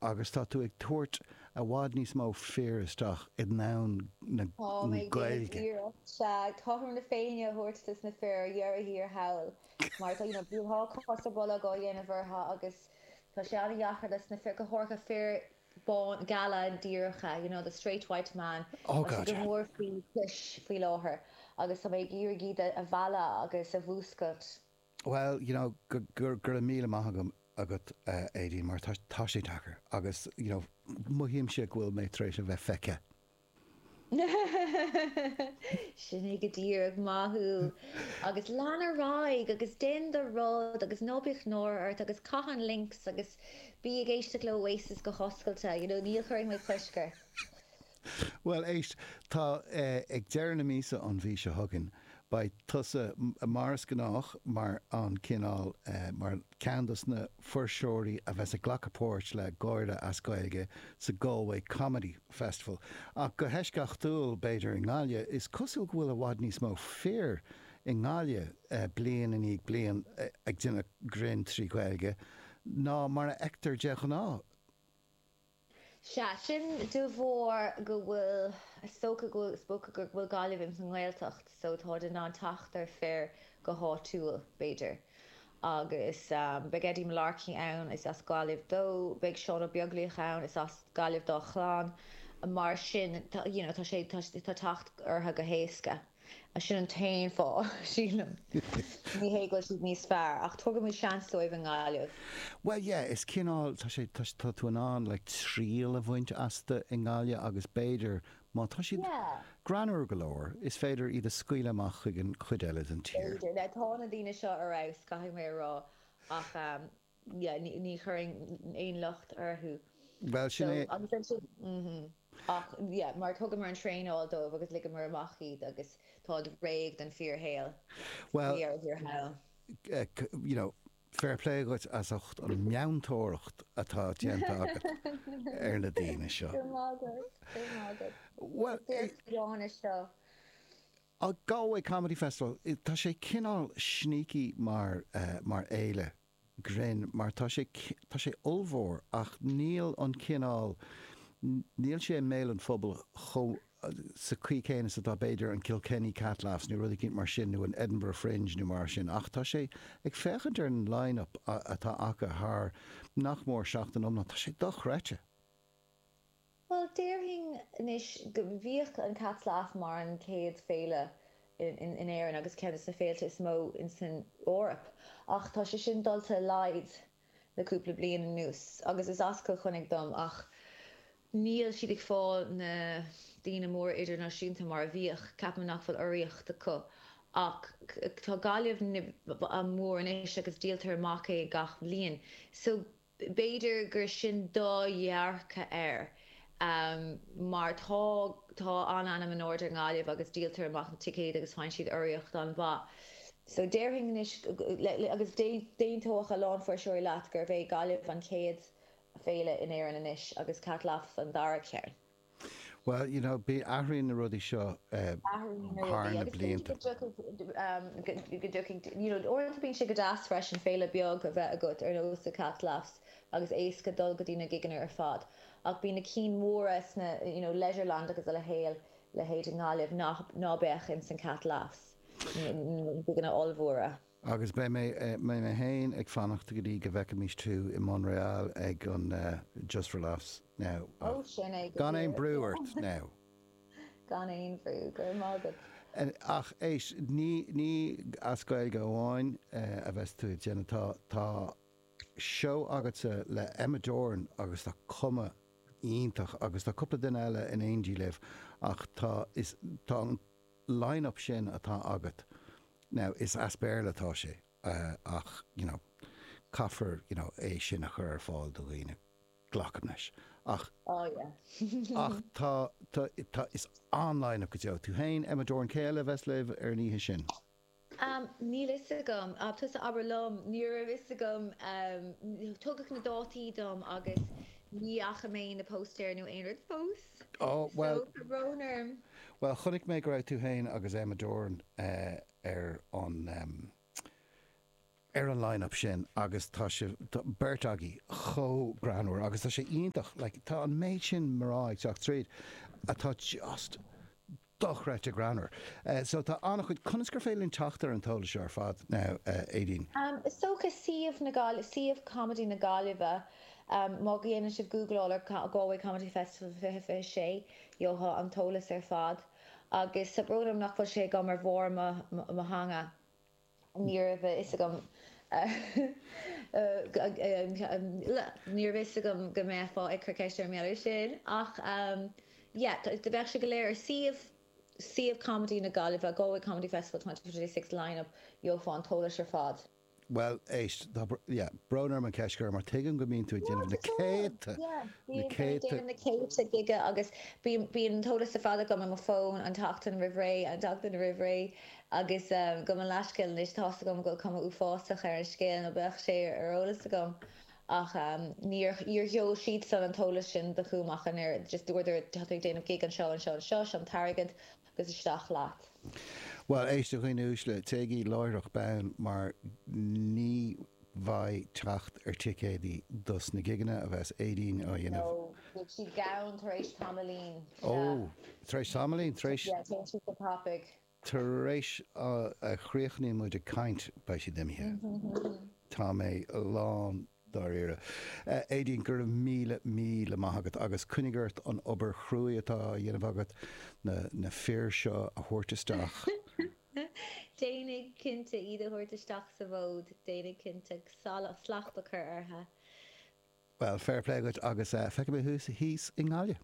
agus tá tú ag tabhairt i bhfad níos mó fir isteach i ndomhan na Gaeilge. Táim ag déanamh iarracht, sea, cothrom na Féinne a thabhairt dos na fir ar dheireadh thiar thall mar tá, you know, bíonn dhá cos sa bholg á dhéanamh orthu agus tá sé an-deacair dos na fir, go háirithe fir bána, geala, díreacha, you know, the straight white man, Oh god, yeah. tá sé go mór faoi chois faoi láthair agus tá mé ag iarraidh iad a mhealladh agus a mhúscailt. Bhuel, you know, go raibh míle maith agam, agat, a Aedín, mar tá, tá sé deacair agus, you know, mothaímse go bhfuil mé tar éis a bheith feicthe. Sin é go díreach, maith thú! Agus lean ar aghaidh agus déan do rud agus ná bíodh náire ort agus caith an Lynx agus bí ag éisteacht le Oasis go hoscailte, you know, níl, ní chuirfidh mé cosc ort. Bhuel, éist, tá, ag deireadh na míosa an mhí seo chugainn, beidh tusa, mar is gnách, mar an cineál, mar ceann dos na fuirseoirí a bheas ag glacadh páirt le gáire as Gaeilge sa Galway Comedy Festival. Ach go heisceachtúil, b'fhéidir, i nGaillimh. Is cosúil go bhfuil i bhfad níos mó fir i nGaillimh, bliain i ndiaidh bliain, ag déanamh grinn trí Ghaeilge ná mar a fheictear de ghnáth. Sea, sin de bharr is dócha go bhfuil Gaillimh ins an nGaeltacht so táid in ann teacht ar fir go háitiúil, b'fhéidir. Agus beidh Eddie Mullarkey ann, is as Gaillimh dó, beidh Seán Ó Beaglaoich ann, is as Gaillimh dá chlann, mar sin, you know, tá sé, tá teacht orthu go héasca. Sin an t-aon fáth, sílim. Ní hé go bhfuil siad níos fearr, ach tugaimid seans dóibh i nGaillimh. Bhuel, yeah, is cineál, tá sé, tá, tá tú in ann, like, triail a bhaint astu i nGaillimh agus b'fhéidir, má tá siad greannmhar go leor, is féidir iad a scaoileadh amach chuig an chuid eile den tír. B'fhéidir. Now, tá na daoine seo ar fheabhas, caithfidh mé a rá, ach. ní chuirfinn aon locht orthu Bhuel, sin é. agus ansin ach yeah mar thugamar an traenáil dóibh agus ligeamar amach iad agus táid réidh don fhíorshaol. Bhuel, We are here now. you know fair play dhuit as ucht an meantóireacht atá déanta agat ar na daoine seo. Go raibh maith agat, go raibh maith agat. Bhuel, Is deas é. an Gráinne seo. Ag Galway Comedy Festival, tá sé cineál sneaky mar fhéile grinn mar tá sé, tá sé ollmhór ach níl an cineál, níl sé i mbéal an phobail chomh, sa chaoi chéanna is atá b'fhéidir an Kilkenny Cat Laughs nó rud eicínt mar sin nó an Edinburgh Fringe nó mar sin ach tá sé, ag féachaint ar an line-up atá acu thar nach mór seachtain iomlán, tá sé dochreidte. Bhuel, déarfainn anois go mbíodh an Cat Laughs mar an chéad féile in Éirinn agus ceann de na féilte is mó san Eoraip ach tá sé sin dulta i laghad le cúpla bliain anuas agus is as Cill Chainnigh dom ach níl siad ag fáil na daoine móra idirnáisiúnta mar a bhíodh, ceapaim nach bhfuil urraíocht acu ach tá Gaillimh mór anois agus díoltar amach é gach bhliain so B'fhéidir gur sin do dhearcadh air mar tá tá an-ainm in airde i nGaillimh agus díoltar amach na ticéid agus faigheann siad urraíocht an-mhaith. So déarfainn anois, agus d'aontódh a lán fuirseoirí leat, gurbh é Gaillimh an chéad féile in Éirinn anois agus Cat Laughs an dara ceann. Bhuel, you know, bí, athraíonn na rudaí seo Athraíonn na rudaí thar na blianta agus b'fhéidir go dtiocfaidh, go dtiocfaidh, you know, uaireanta bíonn sé go deas freisin féile bheag a bheith agat ar nós The Cat Laughs agus éasca dul go dtí na gigeanna ar fad ach bíonn na cinn mhóra sna, you know, Leisureland agus a leithéil, leithéid i nGaillimh nach, ná beadh in san Cat Laughs, na gigeanna ollmhóra. Agus beidh mé féin ag fanacht go dtí go bhfeicfimís tú i Montréal ag an Just for Laughs now Ó, ach sin é go díreach, yeah. Gan aon brú ort now! Gan aon bhrú, go raibh maith agat. Ach éist, ní as Gaeilge amháin a bheas tú ag déanamh atá seó agatsa le Emma Doran agus tá cuma iontach agus tá cúpla duine eile in éindí libh ach tá an line-up sin atá agat, now, is as Béarla atá sé ach, you know, caithfear, you know, é sin a chur ar fáil do dhaoine, glacaim leis. Ach, Oh yeah. ach tá, tá, tá, is an line-up go deo. Tú féin, Emma Doran, cé eile a bheas libh ar an oíche sin? Am, Níl a fhios agam. Ab, Tusa abair liom. Ní raibh a fhios agam. Am, Tugadh na dátaí dom agus ní fhaca mé na póstaeir nó aon rud fós. Á, So, bhuel. tá brón orm. Bhuel, chonaic mé go raibh tú féin agus Emma Doran ar an. ar an line-up sin agus tá sibh beirt agaibh chomh greannmhar agus tá sé iontach, like tá an méid sin mná ag teacht tríd atá just dochreidte greannmhar. So tá an-chuid, conas gur féidir linn teacht ar an t-eolas seo ar fad now Aideen? Is dócha suíomh na Gaillimhe, suíomh Comedy na Gaillimhe má dhéanann sibh gúgláil ar Galway Comedy Festival 2026 gheofá an t-eolas ar fad agus tá brón orm nach bhfuil sé agam ar bharr mo theanga. Ní raibh a fhios agam Ní raibh a fhios agam go mbeifeá ag cur ceiste ar an mbealach sin ach yeah bheadh sé go léir ar suíomh suíomh comedy na Gaillimhe Galway Comedy Festival twenty twenty six line-up gheofá an t-eolas ar fad. Bhuel éist tá yeah brón orm an cheist a chur mar tuigim go mbíonn tú ag déanamh na céadta na céadta na céadta gig agus bíonn bíonn an t-eolas ar fad agam i mo fón an tseachtain roimh ré an tseachtain roimh ré. Agus gabh mo leithscéal anois, tá's agam go bhfuil cuma uafásach ar an scéal, nó bheadh sé ar eolas agam, ach níor sheol siadsan an t-eolas sin chugam ach an oiread, just dúradar, tá tú ag déanamh gig anseo, anseo, anseo, seo an t-airgead agus isteach leat. Bhuel, éist a dhaoine uaisle, téigí láithreach bonn mar ní bheidh teacht ar ticéadaí dos na gigeanna a bheas Aedín a dhéanamh. No, beidh siad gann tar éis tamaillín, sea. Oh, tar éis tamaillín, tar éis? Yeah, téann siad go tapaigh. Tar éis a chríochnaíonn muid ag caint, beidh siad imithe. Tá mé lán dáiríre. Aedín, go raibh míle, míle maith agat agus coinnigh ort an obair chruaidh atá á dhéanamh agat, na fir seo a thabhairt isteach. Déanfaidh, cinnte. Iad a thabhairt isteach sa bhfold, déanfaidh cinnte. Slacht a chur orthu. Bhuel, fair play dhuit agus feicfidh mé thú thíos i nGaillimh.